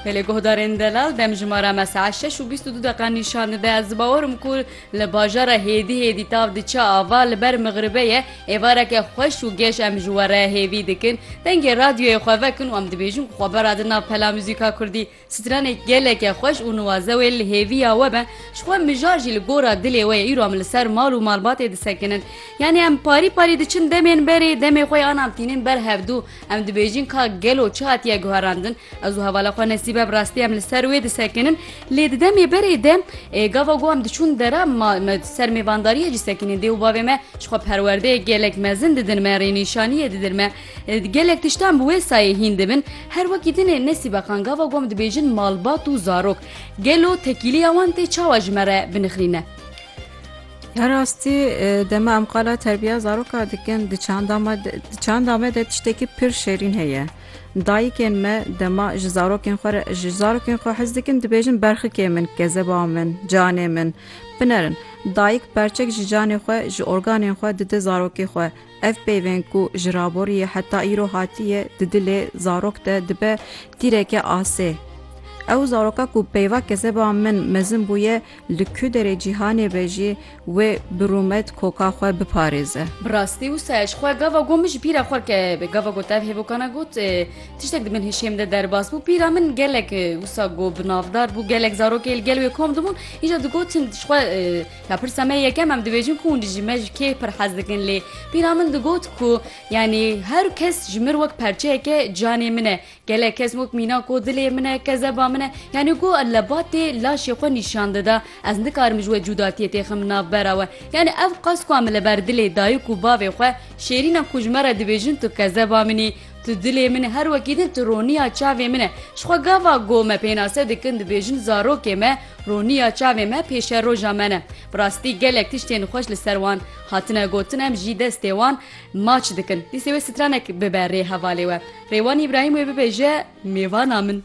Pelê guhdarên delal demjimara mesaet şeş û bîst û du deqan nîşan dide. Ez bawer im ku li bajara hêdî hêdî tav diçe ava li ber mixribê ye. Êvareke xweş û geş em ji we re hêvî dikin. Dengê radyoyê xwe vekin û em dibêjin ku xwe beradin nav pela muzîka kurdî. Stranê geleke xweş û niwaze wê li hêviya we be. Ji xwe mijar jî li gora dilê we ye. Îro em li ser mal û malbatê disekinin. Yanî em parî parî diçin demên berê demê xwe yan em tînin ber hevdu. Em dibêjin ka gelo çi hatiye guherandin, ez û hevala xwe nesîbe bi rastî em li ser wê disekinin, lê di demê berê de gava ku em diçûn dera ma me ser mêvandariyê jî sekinîn dê û bavê me ji xwe perwerdeyek gelek mezin didin me, rênîşaniyê didin me. Gelek tiştan bi wê sayê hîn dibin. Her wekî din ê Nesîbe xan gava ku em dibêjin malbat û zarok. Gelo tekîliya wan tê çawa ji me re binixrîne? Ya rastî dema em qala terbiya zaroka dikin di çanda me di çanda me de tiştekî pir şêrîn heye. Dayikên me dema ji zarokên xwe re ji zarokên xwe hez dikin dibêjin berxikê min, kezeba min, canê min. Binerin, dayik perçek ji canê xwe, ji organên xwe dide zarokê xwe. Ev peyvên ku ji raborî ye heta îro hatiye di dilê zarok de dibe tîreke asê. Ew zaroka ku peyva kezeba min mezin bûye, Li ku derê cîhanê be jî wê bi rûmet koka xwe biparêze. Bi rastî wisa ji xwe gava got min ji pîra xwe ke gava ku tev hêvokana got tiştek di min hişê min de derbas bû. Pîra min gelek wisa ku bi navdar bû gelek zarokê li gel wê kom dibûn îja digotin ji xwe ya pirsa me yekem em dibêjin ku hûn ji me ji kê pir hez dikin lê pîra min digot ku yanî her kes ji min wek perçeyeke canê min e Gelek kes wek mîna ku dilê min e, kezeba min e, yanî ku lebatê laşê xwe nîşan dida. Ez nikarim ji we cûdatiyê têxim navbera we. Yanî ev qas ku em li ber dilê dayik û bavê xwe şêrînan ku ji me re dibêjin tu kezeba min î, tu dilê min î, her wekî din tu roniya çavê min î. Ji xwe gava go me pênase dikin dibêjin zarokê me roniya çavê me pêşeroja me ne. Bi rastî gelek tiştên xweş li ser wan hatine gotin em jî destê wan Maç dikin. Dîsê wê stranek bibe rê hevalê we. Rêwan Îbrahîm wê bibêje mêvana min.